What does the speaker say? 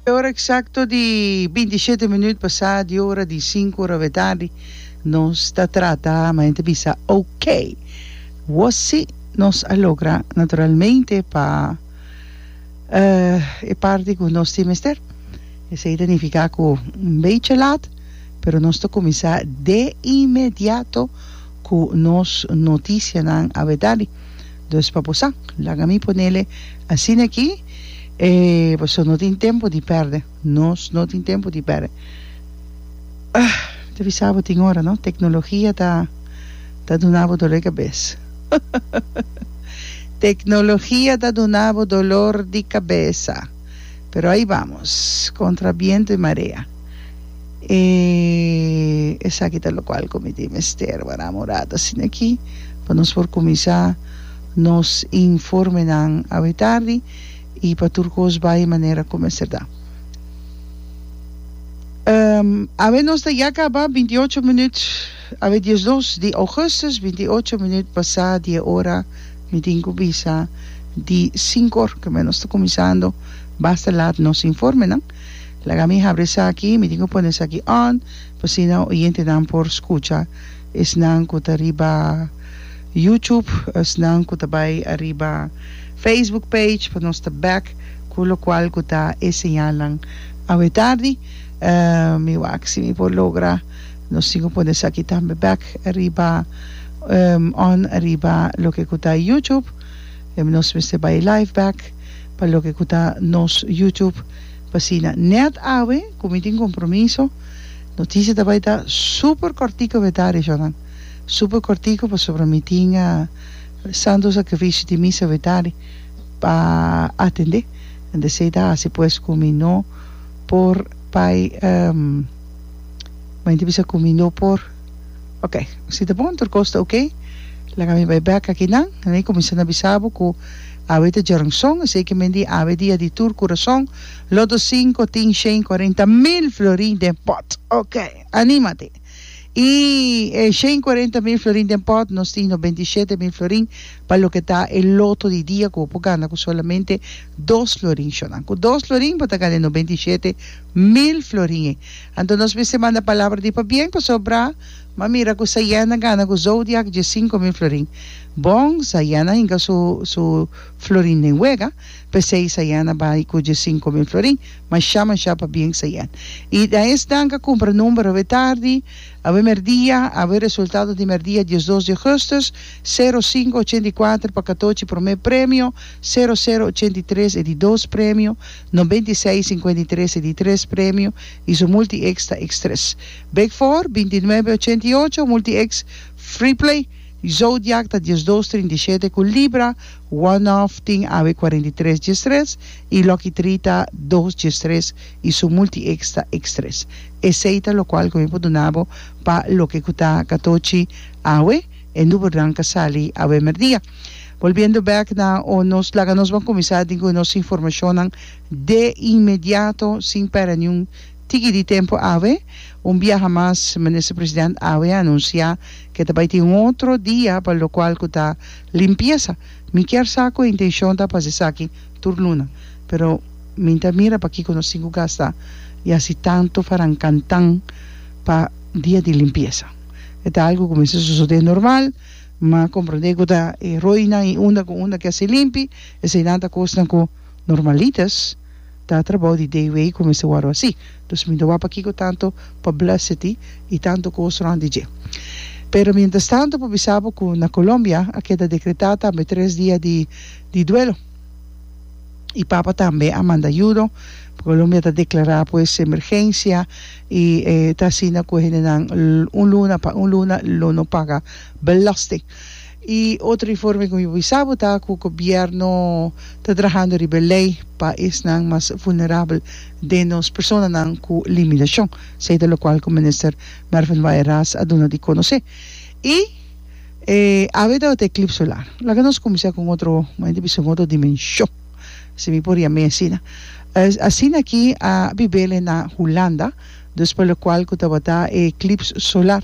E ora eksakto di binti i shete minüt pasá di ora di sinku ora we tardi. Nos ta trata ma henter bisa okay. Wossi nos a logra naturalmente pa e parti ku nos tin mester. Esei ta nifiká ku un bechi lat, pero nos ta kuminsá de inmediato ku nos notisianan a we tardi. Dos pa posa, laga mi ponele asina aki, e paso no tin tempo di perde, nos no tin tempo di perde. Ah, mi ta bisa bo tin ora, no? Tecnologia ta ta duna bo dolor di cabes. Tecnologia ta duna bo dolor di cabesa, pero ahi vamos, contra biento y marea. E esaki ta lokual ku mi tin mester wara morada sin'akí pa nos por kuminsá nos informenan awe tardi i pa tur kos bai manera ku mester ta. Awe nos ta ya kaba binti i ocho minüt, awe dies i dos di ougùstùs, binti i ocho minüt pasá di e ora, mi tin ku bisa di sinkor, ke men nos ta kuminsando basta lat nos informenan. Laga mi habri esaki, mi tin ku pone esaki on pa asina oyentenan por skucha, esnan ku ta riba YouTube, esnan ku ta bai ariba Facebook page, pa nos ta bèk ku lokual ku ta e señalnan. Awe tardi mi wak si mi por logra, nos tin ku pone esaki tambe bèk ariba on ariba loke ku ta YouTube, nos mester bai live bèk. Pa loke cu ta nos YouTube p'asina. Net awe cu mi tin compromiso, noticia ta bay ta super cortico beta Rishonan. Super cortico pasobra mi tin santo sacrificio di misa beta ri pa atende. Enta esey ta haci pues cu mi no por bay, mi ta bisa cu mi no por. Ok, si ta bon, tur kos ta ok. Laga mi bai bek aki nan. Nan a kuminsá na bisa bo ku awe ta djoranson, esei ke men di awe dia di tur kurason. Loto sinku tin shen kuarenta mil florin den pòt. Ok, anímate! I e shen kuarenta mil florin den pòt, nos tin no benti shete mil florin pa loke ta e loto di dia ku bo por gana ku solamente dos florin. Shó nan ku dos florin bo ta gana e no benti shete mil florin ei. Anto nos mester manda palabra di pabien pasobra m'a mira cu Sayana gana cu Zodiac dje cinco mil florin. Bon, Sayana hinca su su florin den wega, p'esey Sayana bay cu dje cinco mil florin. Masha masha pabien Sayan. Y na es danca cumpra number awe tardi, awe merdia, awe resultado di merdia diesdos di augustus, sero cinco ochenta y kuater pa katochi prome premio, sero sero ochenta y tres e di dos premio, Noventa i seis, sinkuenta i tres e di tres premio i su multi-X ta X tres. Bek for, binti i nuebe ochenta i ocho, multi-X, Freeplay, Zodiac ta dies dos trinta i shete ku Libra, One Off tin awe kuarenta i tres dies tres i Lucky Three ta dos dies tres i su multi-X ta X tres. Esei ta lokual ku mi por duna bo pa loke ku ta katochi awe. E nubernan ka sali awe merdia. Bolbiendo bek na o nos laga nos ban kuminsá dingui nos informashonnan de inmediato sin pèrdè niun tiki di tempu awe. Un biaha mas Minister President awe a anunsiá ke ta bai tin un otro dia pa lokual ku ta limpiesa. Mi kier sa ku e intenshon ta pa hasi esaki tur luna. Pero mi ta mira pakiko nos tin ku gasta yasi tantu faran kantan pa dia di limpiesa. E ta algu ku mester sosodé normal, ma komprondé ku ta e roinan i unda ku unda ke hasi limpi, eseinan ta kosnan ku normalitas, ta trabou di dei wei ku mester wòrdu hasi. Dus mi ta wak pakiko tantu publicity i tantu kos rònt di dje. Pero mientras tanto por bisa bo ku na Colombia a keda dekretá tambe tres dia di di duelo. E Papa tambe a manda yudo. Colombia ta deklará pues emergensia. I e ta asina ku hendenan un luna pa un luna lo no paga belasting. I otro informe ku mi por bisa bo ta ku gobièrnu ta trahando riba e lei pa esnan mas vulnerabel den nos personanan ku limitashon, esei ta lokual ku Minister Mervin Waaijenraas a duna di konosé. I e awe tabata e klip solar. Laga nos kuminsá ku un otro, mi ta bisa un otro dimenshon. si mi por yam'é asina. Asina aki a bib'el e na Hulanda, dus pa lokual ku tabata e eklips solar.